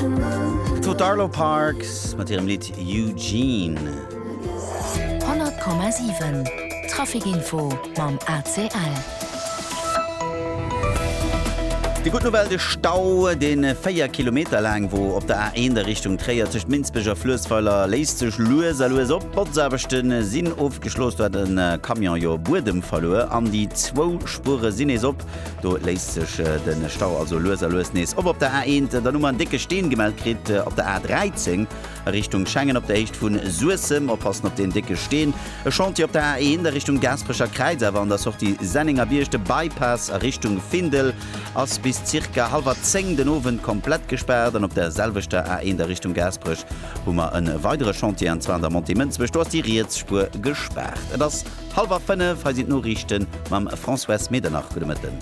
D'Tut D'Arlo Parks mat hirem Lidd Eugene. 100,7 Traficinfo mam ACL. Dir gutt nowell de Stau, deen 4 Kilometer laang wor op der A1 a Richtung Tréier tëscht Minsbech a Fluessweiler léisst sech lues a lues op. D'Botzaarbechten sinn ofgeschloss, do hat e Camion jo Buedem verluer an déi zwou Spuere sinn nees op. Do léisst sech de Stau also lues a lues nees op. Op der A1, dann hu mer en décke Steen gemellt kritt. Op der A13 a Richtung Schengen op der Héicht vu Suessem oppassen op deen décke Steen. E Chantier op der A1 a Richtung Gaasperecher Kräiz, awer an der Sortie Sennengerbierg. De Bypass a Richtung Findel ass bis zirka hallwer zéng den Owend komplett gespaart. An op der selwechter A1 a Richtung Gaasperech hu mer e weidere Chantier, an zwar an der Montée Mënzwech. Do ass déi riets Spuer gespaart. Et ass. Halwer 5, hei sinn d'Noriichten mam Françoise Medernach. Gudde Mëtten.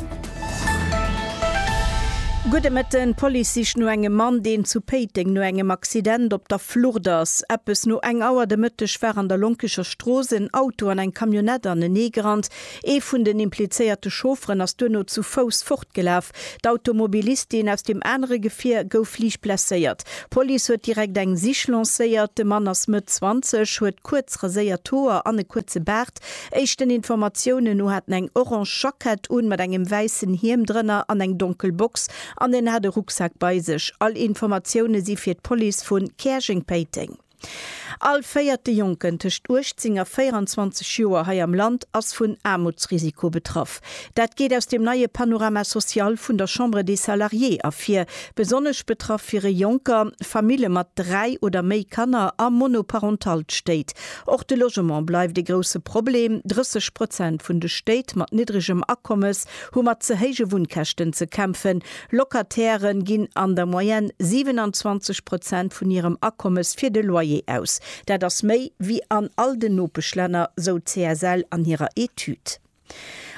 Gudde Mëtten. D'Police sicht no engem Mann, deen zu Péiteng no engem Accident op der Flucht ass. Eppes no eng Auer de Mëtteg war an der Lonkecher Strooss en Auto an eng Camionnette aneneegerannt. Ee vun den implizéierte Chaufferen ass duerno zu Fouss fortgelaf. D'Automobilistin aus dem anere Gefier gouf liicht blesséiert. D'Police huet direkt eng Sich lancéiert. De Mann ass Mëtt 20, huet kuerz raséiert Hoer an e kuerze Baart. Éischten Informatiounen no hat en eng orange Jackett un, mat engem wäissen Hiem drënner an eng donkel Box an en hat e Rucksak bei sech. All Informatioune si fir d'Police vu Käerjeng-Péiteng. All véierte Jonken tëscht 18 a 24 Joer hei am Land ass vun Aarmutsrisiko betraff. Dat geet aus dem neie Panorama social vun der Chambre des Salariés ervir. Besonnesch betraff wiere Jonker, Famille mat dräi oder méi Kanner a monoparentalt Stéit. Och de Logement bleift e grousse Problem. 30 Prozent vun de Stéit mat niddregem Akommes hu mat ze héije Wunnkäschten ze kämpfen. Locatairen ginn an der Moyenne 27 Prozent vun hirem Akommes fir de Loyer aus. Dat ass méi wéi an all den Nopeschlänner, sou d'CSL an hirer Etüd.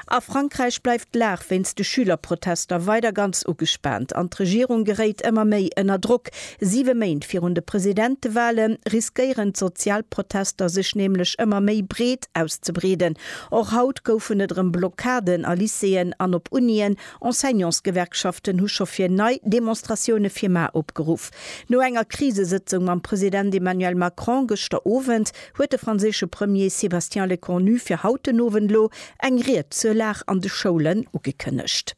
A Frankräich bleift d'Lag wéinst de Schülerprotester weider ganz ugespaant an d'Regierung geréit ëmmer méi ënner Drock. Siwe Méint virun de Presidentewale riskéieren d'Sozialprotester sech nämlech ëmmer méi breet auszebreeden. Och haut goufen et erëm Blockaden a Lycéeën an op Unien. Enseignantsgewerkschaften hu scho fir nei Demonstratioune fir mar opgeruff. No enger Krisesëtzung mam President Emmanuel Macron gëschter Owend huet de franséische Premier Sébastien Lecornu fir haut den Owend elo eng Ried zur Lag an de Schoulen ugekënnegt.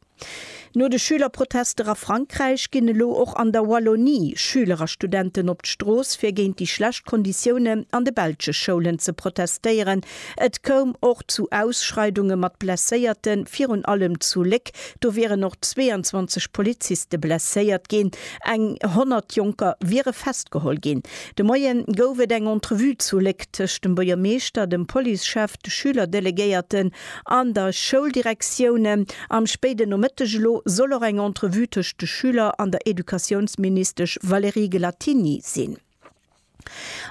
No de Schülerprotester a Frankräich ginn elo och an der Wallonie Schüler a Studenten op d'Strooss fir géint déi schlecht Konditioune an de belsche Schoulen ze protestéieren, Et koum och zu Ausschreidunge mat Blesséierten, virun allem zu Léck. Do wieren och 22 Poliziste blesséiert ginn. Eng 100 Jonker wiere festgeholl ginn. De Moie gouf et eng Entrevue zu Léck tëscht dem Buergermeeschter, dem Policechef, de Schülerdelegéierten an der Schouldirektioun. Am spéiden Nomëtteg elo soll och eng Entrevue tëscht de Schüler an der Educatiounsministesch Valérie Gelattini sinn.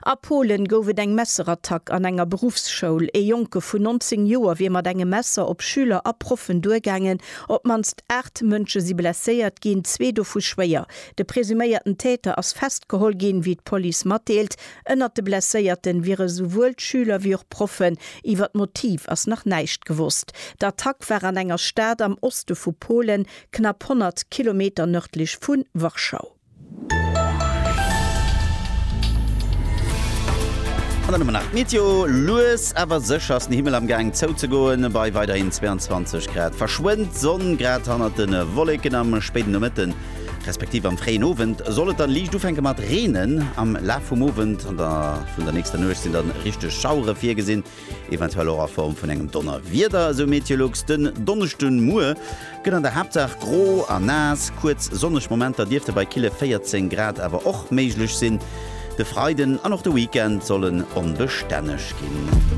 A Polen gouf et eng Messerattack an enger Beruffsschoul. Ee Jonke vun 19 Joer wier mat engem Messer op Schüler a Proffen duergaangen. Op d'mannst 8 Mënsche si blesséiert ginn, zwee dovu schwéier. De presuméierten Täter ass festgeholl ginn, wéi d'Police matdeelt. Ënnert de Blesséierte wiere esouwuel Schüler wéi och Proffen. Iwwer d'Motiv ass nach näischt gewosst. D'Attack war an enger Stad am Oste vu Polen, knapp 100 Kilometer nërdlech vu Warschau. An dann hu mer nach d'Meteo, lues awer sécher ass den Himmel am Gaang zou ze goen, bei weiderhin 22 Grad verschwënnt d'Sonn grad hannert de Wolleken. Am spéiden Nomëtte respektiv am fréien Owend soll et dann liicht ufänke mat reenen. Am Laf vum Owend an vun der nächster Nuecht sinn dann richteg Schauere virgesinn. eventuell och a Form vun engem Donnerwieder, esou Meteolux. Den Donneschden Muer gëtt an der Haaptsaach gro a naass, kuerz sonneg Momenter dierfte bei kille 14 Grad awer och méiglech sinn. De Freiden an och de Weekend solle onbestänneg ginn.